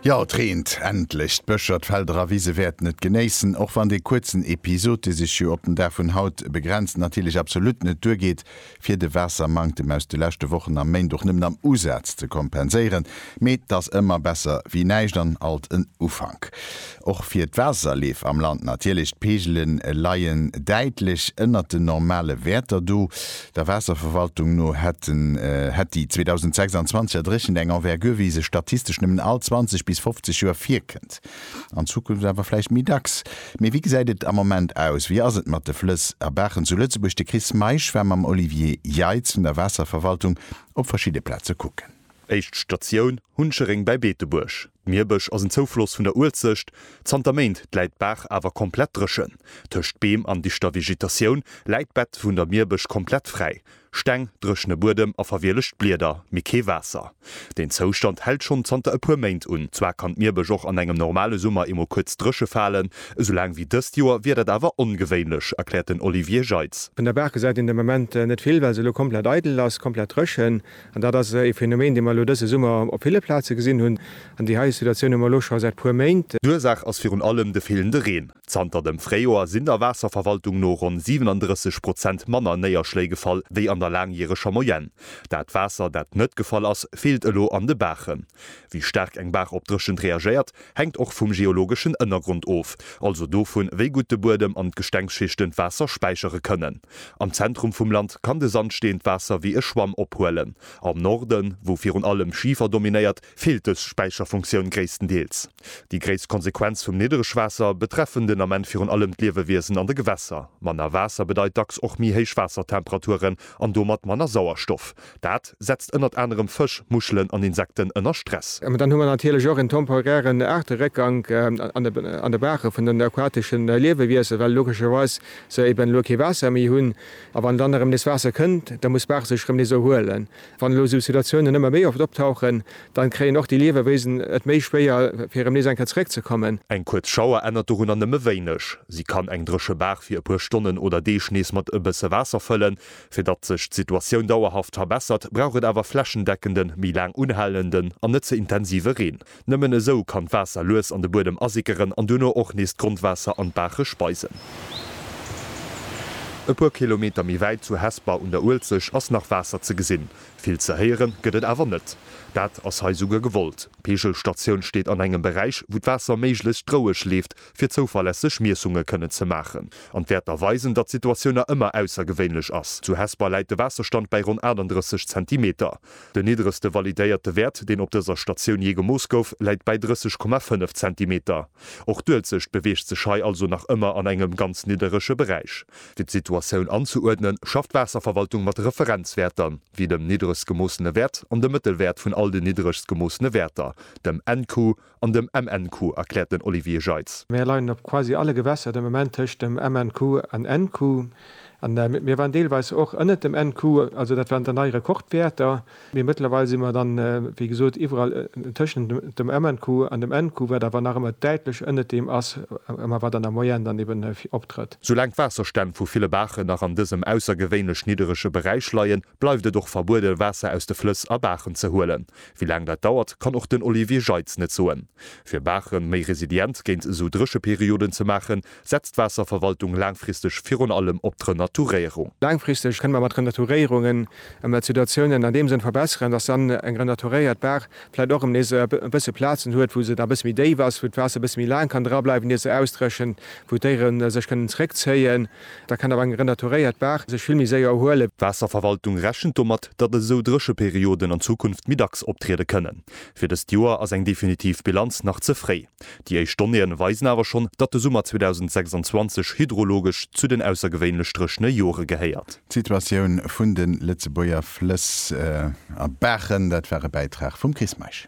Jo, et reent endlech! D'Bëscher, d'Felder a Wise wäerten et genéissen, och wann dee kuerzen Episod, dee sech jo op den Dag vun haut begrenzt, natierlech absolut net duergeet, fir de Waassermanktem aus de leschte Wochen a Méint och nëmmen am Usaz ze kompenséieren. Mee 't ass ëmmer besser wéi näischt an alt en Ufank. Och fir d'Waasserleef am Land natierlech. D'Peegele leien däitlech ënnert den normale Wäerter do. Der Waasserverwaltung no hätt déi 2026er Dréchent eng Envergure, wéi se statistesch nëmmen all 20 bis 50 Joer virkënnt. An Zukunft awer vläicht méi dacks. Mee wéi gesäit et am Moment aus? Wéi ass et mat de Flëss a Baachen zu Lëtzebuerg? De Chris Meisch war mam Olivier Jeitz vun der Waasserverwaltung op verschidde Plaze kucken. Éischt Statioun, Huncheréng bei Beetebuerg. D'Mierbësch ass en Zoufloss vun der Uelzecht. Zanter Méint läit d'Baach awer komplett dréchen. Tëscht Beem an dichter Vegetatioun läit d'Bett vun der Mierbësch komplett fräi. Steng, dréchene Buedem a verwielegt Blieder, mee kee Waasser. Deen Zoustand hält schonn zanter e puer Méint un. Zwar kann d'Mierbësch och an engem normale Summer eemol kuerz dréche falen, esou laang wéi dëst Joer wier dat awer ongewéinlech, erkläert den Olivier Jeitz. Vun der Baach gesäit een de Moment net vill, well se elo komplett eidel ass, komplett dréchen. An dat ass e Phänomen, dee mer elo dëse Summer op ville Plaze gesinn hunn. An déi hei Situatioun hu mer elo scho säit puer Méint. D'Ursaach ass virun allem de feelende Reen. Zanter dem Fréijoer sinn der Waasserverwaltung no ronn 37 Prozent manner Néierschléi gefall wéi an der laangjäreger Moyenne. Dat Waasser, dat net gefall ass, feelt elo an de Baachen. Wéi staark eng Baach op Dréchent reagéiert, hänkt och vum geologeschen Ënnergrond of, also dovun, wéi gutt de Buedem an d'Gestengsschichten d'Waasser späichere kënnen. Am Zentrum vum Land kann de Sandsteen d'Waasser wéi e Schwamm ophuelen. Am Norden, wou virun allem Schifer dominéiert, feelt dës Späicherfunktioun gréisstendeels. Déi gréisst Konsequenz vum Niddregwaasser betreffen den Ament virun allem d'Liewewiesen an de Gewässer. Manner Waasser bedeit dacks och méi héich Waassertemperaturen an domat manner Sauerstoff. Dat setzt ënnert anerem Fësch, Muschelen an Insekten ënner Stress. Mä dann hu mer natierlech och en temporären Aarteréckgank an de Baache vun den aquatesche Liewewiesen, well logescherweis se eben elo kee Waasser méi hunn. A wann dann erëm nees Waasser kënnt, da muss d'Baach sech erëm nees erhuelen. Wann elo esou Situatiounen ëmmer méi oft optauchen, dann kréien och déi Liewewiesen et méi schwéier, fir erëm nees eng Kéier zeréckzekommen. Eng kuerz Schauer ännert dorunner nëmme wéineg. Si kann eng dréche Baach fir e puer Stonnen oder Deeg nees mat e bësse Waasser fëllen, Fir datt sech d'Situatioun dauerhaft verbessert, brauch et awer flächendeckende, méi laang unhalenden an net ze intensive Reen. Nëmmen esou kann d'Waasser lues an de Buedem asickeren an duerno och nees d'Grondwaasser an d'Baache speisen. E puer Kilometer méi wäit, zu Hesper un der Uelzecht, ass nach Waasser ze gesinn. Vill ze héieren gëtt et awer net. Dat ass hei souguer gewollt. D'Peegelstatioun steet an engem Beräich, wou d'Waasser méiglechst roueg leeft, fir zouverlässeg Miessunge kënnen ze maachen an d'Wäerter weisen, datt d'Situatiouna ëmmer aussergewéinlech ass. Zu Hesper läit de Waasserstand bäi ronn 38 Zentimeter. Den niddregste validéierte Wäert, deen op dëser Statioun jee gemooss gouf, läit bäi 30,5 Zentimeter. Och d'Uelzecht beweegt sech hei also nach ëmmer an engem ganz nidderege Beräich. Fir d'Situatioun anzeuerdnen, schafft d'Waasserverwaltung mat Referenzwäerter, wéi dem niddregst gemoossene Wäert an dem Mëttelwäert vun all den niddregst gemoossene Wäerter, dem NQ, An dem MNQ, erkläert den Olivier Jeitz. Mir leien op quasi alle Gewässer de Moment tëscht dem MNQ an NQ. An mir waren deelweis och ënnert dem NQ, also dat waren dann nei Rekordwäerter. Mee mëttlerweil si mer dann, wéi gesot, iwwerall tëschent dem MNQ an dem NQ, wat awer nach ëmmer däitlech ënnert deem ass, ma wat an der Moyenne dann eben optrëtt. Soulaang d'Waasserstänn vu ville Baachen nach an dësem aussergewéinlech nidderege Beräich leien, bleift et och verbuede Waasser aus de Flëss a Baachen ze huelen. Wéi laang dat dauert, kann och den Olivier Jeitz net soen. Fir Baache méi resilient géint esou Drécheperioden ze maachen, setzt d'Waasserverwaltung laangfristeg virun allem op d'Renaturéierung. Laangfristeg kënne mer mat Renaturéierungen emmer d'Situatiounen an deem Sënn verbesseren, datt dann eng renaturéiert Baach vläicht och erëm nees e bësse Plazen huet, wou se da e bësse méi déif ass, wou d'Waasser e bësse méi laang kann drableiwen, ier se ausdréchent, wou d'Déiere sech kënnen zréckzéien. Da kann awer eng renaturéiert Baach sech vill méi séier erhuelen. D'Waasserverwaltung rechent domat, datt esou Drécheperioden an Zukunft méi dacks optriede kënnen. Fir dëst Joer ass eng definitiv Bilanz nach ze fréi. Déi éischt Donnéeën weisen awer schonn, datt de Summer 2026 hydrologesch zu den aussergewéinlech dréchene Jore gehéiert. D'Situatioun vun de Lëtzebuerger Flëss a Baachen, dat war e Bäitrag vum Chris Meisch.